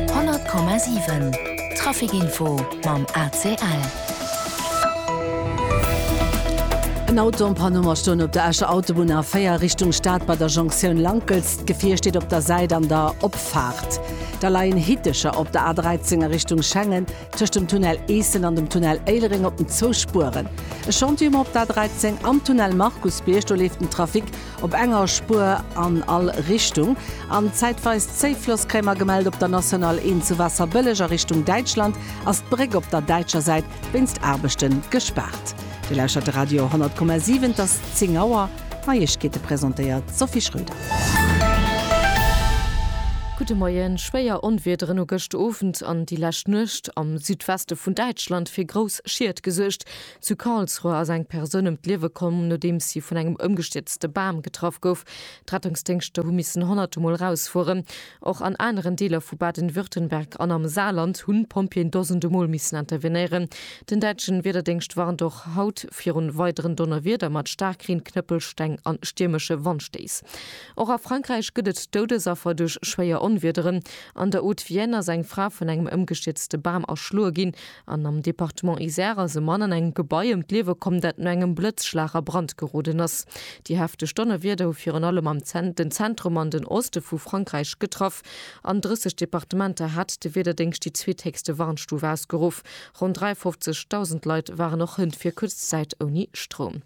100,7 Trafic Info mam ACL. En Auto am Panneau a stoen op der Escher Autobunn A4 Richtung Stad bei der Jonktioun Lankels. D'Gefier steet op der Säit an der Opfaart. Da leien Hitecher op der A13 a Richtung Schengen, tëscht dem Tunnel Eessen an dem Tunnel Éilereng op den zwou Spueren. E Chantier um op der A13 am Tunnel Markusbierg, do leeft den Trafic Op enger Spuer an all Richtung. An zäitweis Zéifloss kréie mer gemellt op der National 1 zu Wasserbëlleg a Richtung Däitschland ass d'Bréck op der däitscher Säit wéinst Aarbechte gespaart. Dir lauschtert de Radio 100,7. Et ass 10 Auer. D'Neiegkeete presentéiert d'Sophie Schröder. Gudde Moien. Schwéier Onwiederen hu gëscht Owend an déi lescht Nuecht am Südweste vun Däitschland fir grouss Schied gesuergt. Zu Karlsruhe ass eng Persoun ëm d'Liewe komm, nodeems si vun engem ëmgestierzte Bam getraff gouf. D'Rettungsdéngschter hu missen honnerte Mol rausfueren. Och an aneren Deeler vu Baden-Württemberg an am Saarland hunn d'Pompjeeën dosende Mol missen intervenéieren. Den däitschen Wiederdéngscht warnt och haut virun weideren Donnerwieder mat Staarkreen, Knëppelsteng a stiermesche Wandstéiss. Och a Frankräich gëtt et Doudesaffer duerch schwéier Onwiederen. An der Haute-Vienne ass eng Fra vun engem ëmgestierzte Bam erschloe ginn. An am Departement Isère ass e Mann an engem Gebai ëm d'Liewe komm, dat no engem Blëtzschlag a Brand geroden ass. Déi hefteg Donnerwieder hu virun allem am den Zentrum an den Oste vu Frankräich getraff. An 30 Departementer hat de Wiederdéngscht déi zweethéchste Warnstuf ausgeruff. Ronn 53.000 Leit waren och hënt fir kuerz Zäit ouni Stroum.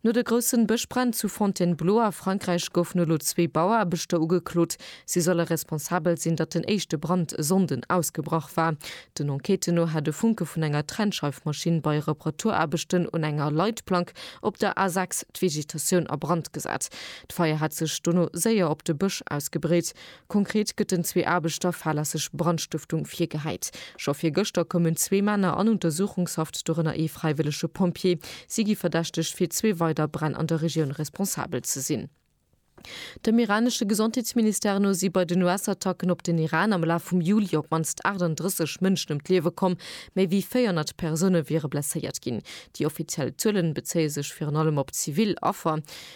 No de groussen Bëschbränn zu Fontainebleau a Frankräich goufen elo zwee Bauaarbechter ugeklot. Si solle responsabel sinn, datt den éischte Brand e Sonnden ausgebrach war. Den Enquêten no hat e Funke vun enger Trennscheifmaschinn bei Reparaturaarbechten un enger Leitplank op der A 6 d'Vegetatioun a Brand gesat. D'Feier hat sech dono séier op de Bësch ausgebreet. Konkret gëtt den zwee Aarbechter fahrlässeg Brandstëftung virgehäit. Scho virgëschter koumen zwee Männer an Untersuchungshaft, dorënner ee fräiwëllege Pompjee. Si gi verdächtegt, fir zwee weider Bränn an der Regioun responsabel ze sinn. Dem iranesche Gesondheetsministère no si bei den US-Attacken op den Iran am Laf vum Juli op d'mannst 38 Mënschen ëm d'Liewe komm. Méi wéi 400 Persoune wiere blesséiert ginn. Déi offiziell Zuelen bezéie sech virun allem op zivil Affer.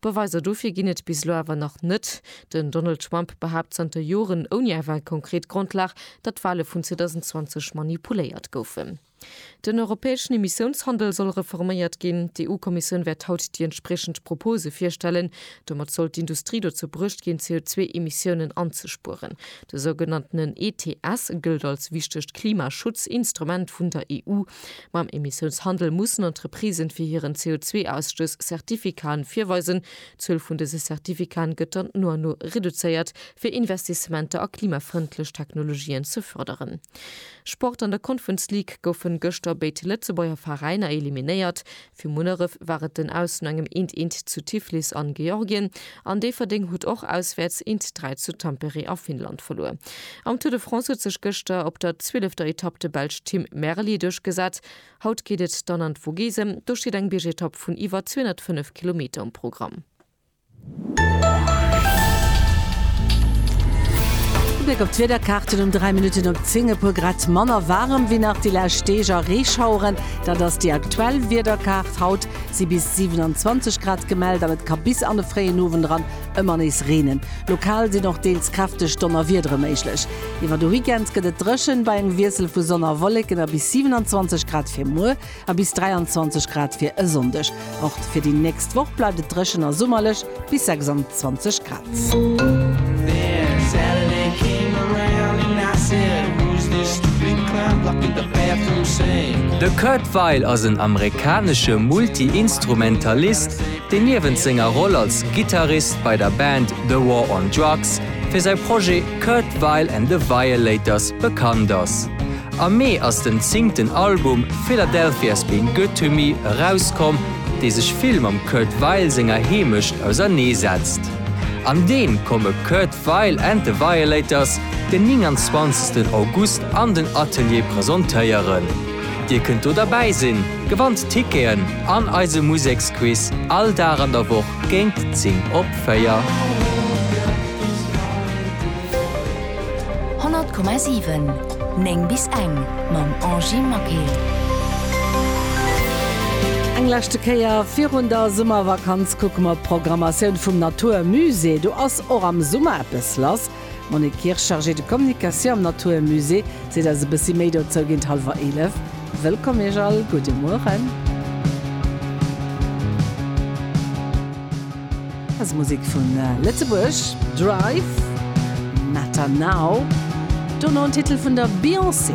Beweiser dofir ginn et bis elo awer nach net. Den Donald Trump behaapt zanter Joren, ouni awer eng konkret Grondlag, datt d'Wale vun 2020 manipuléiert goufen. Den europäeschen Emissiounshandel soll reforméiert ginn. D'EU-Kommissioun wäert haut déi entspriechend Propose virstellen. Domat soll d'Industrie dozou bruecht ginn, CO2-Emissiounen anzespueren. De sougenanntenen ETS gëllt als wichtegt Klimaschutzinstrument vun der EU. Mam Emissiounshandel mussen Entreprisen fir hiren CO2-Ausstöss Certificaten virweisen. D'Zuel vun dëse Certificaten gëtt dann no an no reduzéiert, fir Investissementer a klimafrëndlech Technologien ze fërderen. Sport An der Conference League goufen gëschter béid Lëtzebuerger Veräiner eliminéiert. Fir Munneref war et den Aus no engem eent eent zu Tiflis an Georgien an Déifferdeng hutt och auswäerts eent dräi zu Tampere a Finnland verluer. Am Tour de France huet sech gëschter op der zwielefter Etapp de Belsch Tim Merlier duerchgesat. Haut geet et dann an d'Vogesen, do steet eng Biergetapp vun iwwer 205 Kilometer um Programm. Ubléck op d'Wiederkaarten um 3 Minutten op 10, e puer Grad manner waarem wéi nach déi lescht Deeg a Reeschaueren. Dat ass déi aktuell Wiederkaart. Haut si bis 27 Grad gemellt an et ka bis an de fréien Owend eran ëmmer nees reenen. Lokal sinn och deels kräfteg Donnerwiedere méiglech. Iwwer de Weekend gëtt et dréchen, bei engem Wiessel vu Sonn a Wolleken a bis 27 Grad fir muer. A bis 23 Grad fir e Sonndeg. Och fir déi nächst Woch bleift et dréchen a summerlech, bis 26 Grad. De Kurt Weill ass en amerikanesche Multi-Instrumentalist, deen niewent senger Roll als Gittarist bei der Band The War on Drugs fir säi Projet Kurt Weill and the Violators bekannt ass. Am Mee ass den zingten Album Philadelphia's Been Good To Me erauskomm, dee sech vill mam Kurt Weill senger Heemecht ausernee setzt. An deem komme Kurt Weill and The Violators den 29 August an den Atelier presentéieren. Dir kënnt do derbäi sinn, gewannt Ticketen an eise Museksquiz all Dag an der Woch géint 10 op 4. 100,7 9 bis eng mam Angie Maquet. Eng leschte Kéier virun der Summervakanz kucke mer op d'Programmatioun vum Natur Musée. Do ass och am Summer eppes lass. D'Monique Kirsch, Chargée de Communication am Natur Musée, seet eis e bëssi méi dozou géint hallwer eelef. Wëllkomm Iech all, gudde Mueren. Eis Musek vun Lëtzebuerg, Drive, Matter Now, dono en Titel vun der Beyoncé.